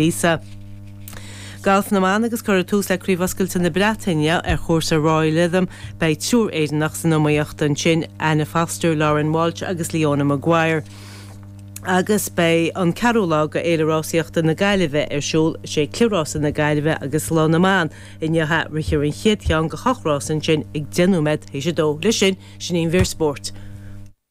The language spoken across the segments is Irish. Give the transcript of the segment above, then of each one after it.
Lisa. Galf na mBan agus cuireadh tús le Craobh Oscailte na Breataine ar chúrsa Royal Lytham. Beidh triúr Éireannach san iomaíocht ansin, Anna Foster, Lauren Walsh agus Leona Maguire. Agus beidh an ceathrú lá de Fhéile Rásaíochta na Gaillimhe ar siúl. Is é Cliathrás na Gaillimhe agus Lá na mBan inniu. Rithfear an chéad cheann go ocht rása ansin ag deich nóiméad théis a dó. Leis sin, sin í an mhír spóirt.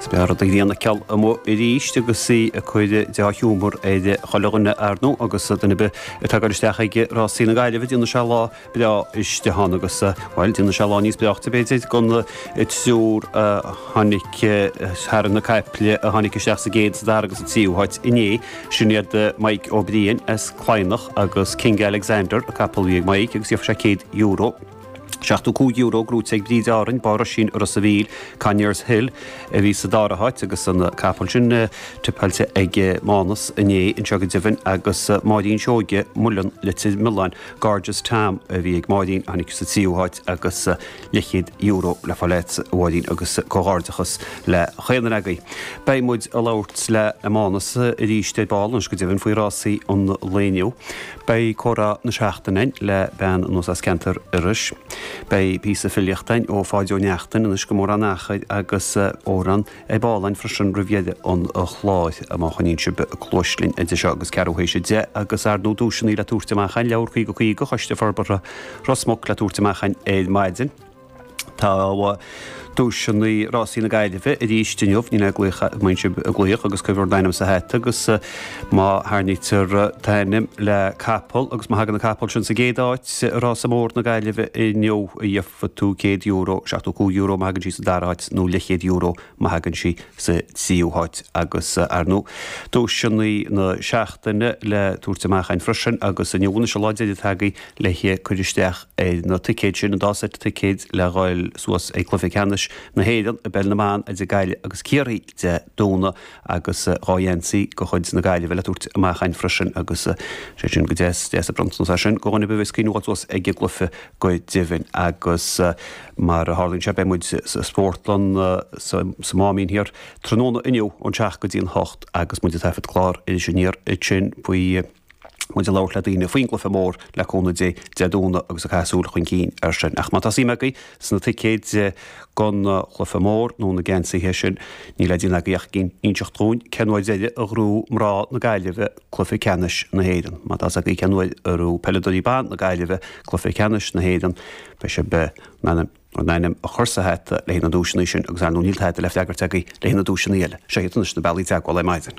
Is beag rud a ghineann a ceall amuigh arís agus í ag cur dea-shiúmar ar chuile dhuine arnú agus duine ar bith atá ag goil isteach ag rásaí na Gaillimhe déanann sé lá breá istigh ann agus, bhuel, déanann sé lá níos breáchta, b'fhéidir, gan an triúr a tháinig thar na caiple, a tháinig isteach sa gcéad, a dara agus sa tríú háit inné. Sin iad Mike O'Brien as Cladhnach agus King Alexander, a capall a bhí ag Mike agus gheofar sé €100. €75 grúite ag Bríd Árainn, Bá Roisín i Ros a' Mhíl, Conyers Hill, a bhí sa dara háit agus an capall sin tipeáilte ag Mánus inné anseo go deimhin agus Máirín Seoige, Muileann, Leitir Mealláin, Gorgeous Tom a bhí ag Máirín, tháinig sa tríú háit agus €50 le fáil agat, a Mháirín agus comhghairdeachas le chaon duine agaibh. Beidh muid ag labhairt le Mánus arís ar ball anois go deimhin faoi rásaí an lae inniu. Beidh comhrá na seachtaine le bean anuas as ceantar Iorrais. Beidh píosa filíochta ó Pháid Ó Neachtain, anois go mórán achair, agus amhrán ag bpálainn freisin roimh dheireadh an chláir, má choinníonn sibh cluas linn idir seo agus ceathrú théis a deich. Agus arnú duaiseanna le tabhairt amach againn, le haghaidh 50 50, Choiste Forbartha Ros Muc le tabhairt amach againn ar maidin. Tá duaiseanna rásaí na Gaillimhe arís inniu, níl le déanamh ach muise glaoch agus cuirfear d'ainm sa hat agus má tharraingítear t'ainm le capall agus má thagann an capall sin sa gcéad áit i rása mór na Gaillimhe inniu gheobhaidh tú €100, €75 má thagann sí sa dara háit nó €50 má thagann sí sa tríú háit agus arnú duaiseanna na seachtaine le tabhairt amach againn freisin agus inniu anois, an lá deiridh atá agaibh le cur isteach ar na ticéid sin, an dá seit ticéad le dhul suas ag cluiche ceannais na hÉireann i bpeil na mban idir Gaillimh agus Ciarraí Dé Domhnaigh agus dhá gheansaí de chuid na Gaillimhe le tabhairt amach againn freisin agus is deas, deas an bronntanas é sin go dhuine ar bith a bheas ag cuimhniú a dhul suas ag an gcluiche go deimhin agus mar a tharlaíonn sé beidh muid sa Spórtlann, sa Máimín thiar, tráthnóna inniu ón seacht go dtí an hocht agus muid ag taifead clár Iris Aniar ansin faoi. muid ag labhairt le daoine faoin gcluiche mór le cúnamh Dé, Dé Domhnaigh agus ag caitheamh súil chun cinn air sin. Ach má tá suim agaibh sna ticéid go an chluiche mór nó na geansaithe sin, níl le déanamh agaibh ach a inseacht dhúinn cén uair deireanach a ghnóthaigh mná na Gaillimhe cluiche ceannais na hÉireann. Má tá 's agaibh cén uair a ghnóthaigh peileadóirí ban na Gaillimhe cluiche ceannais na hÉireann, beidh sibh in ann d'ainm a chur sa hat le haghaidh na duaiseanna sin agus arnú níl tada le freagairt agaibh le haghaidh na duaiseanna eile. Seo iad anois na bealaí teagmhála ar maidin.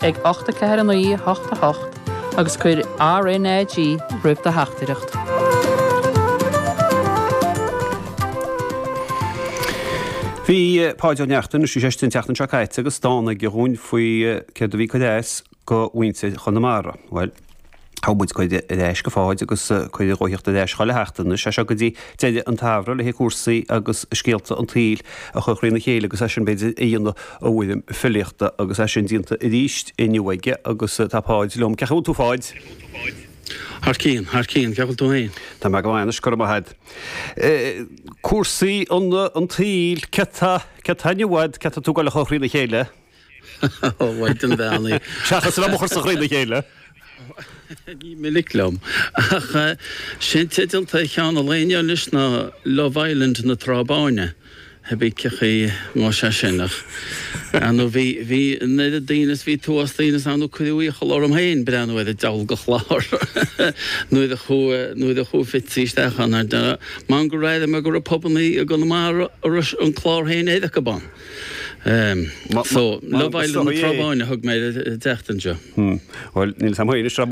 ag 849 88 agus cuir RNAG roimh do theachtaireacht. Bhí Páid Ó Neachtain, is í sé sin an tseachtain seo caite, agus dán aige dhúinn faoi céard a bhí ag cur as go mhuintir Chonamara. Bhuel. Thug muid cuireadh ar ais go Pháid agus cuireadh dhó thíocht ar ais chúinn a theacht anois as seo go dtí deireadh an tsamhraidh, le haghaidh cúrsaí agus scéalta an tsaoil a chur thrína chéile agus as sin, b'fhéidir, a dhéanamh i bhfoirm filíochta. Agus as sin déanta arís inniu aige agus tá Páid liom. Cén chaoi a bhfuil tú Pháid? Thar cionn, thar cionn. Cén chaoi a bhfuil tú féin? Tá mé go maith anois, go raibh maith a'd. Cúrsaí an tsaoil, céard atá inniu a'd, céard atá tú ag goil a chur thrína chéile? Ó bhaint an mheánaigh. Seachas an am a chur sa chroí le chéile. Ní minic liom. Ach sin teideal tae Sheán Ó Laoghaire anois ná Love Island na Trá Báine. Hebí cén chaoi nó sea sin ach ar ndú bhí, bhí an oiread daoine is bhí tuismitheoirí daoine is ar ndú cuireadh iachall orm féin breathnú ar an diabhal de chlár nuair a chuaigh, nuair a chuaigh Fitzy isteach ann ar deireadh. Mar go raibh, mar go raibh pubannaí i gConamara a raibh an clár féin air acu ann. So, Love Island na Trá Báine a thug mé ar an tseachtain seo. Bhuel, níl fhios a'm féin ag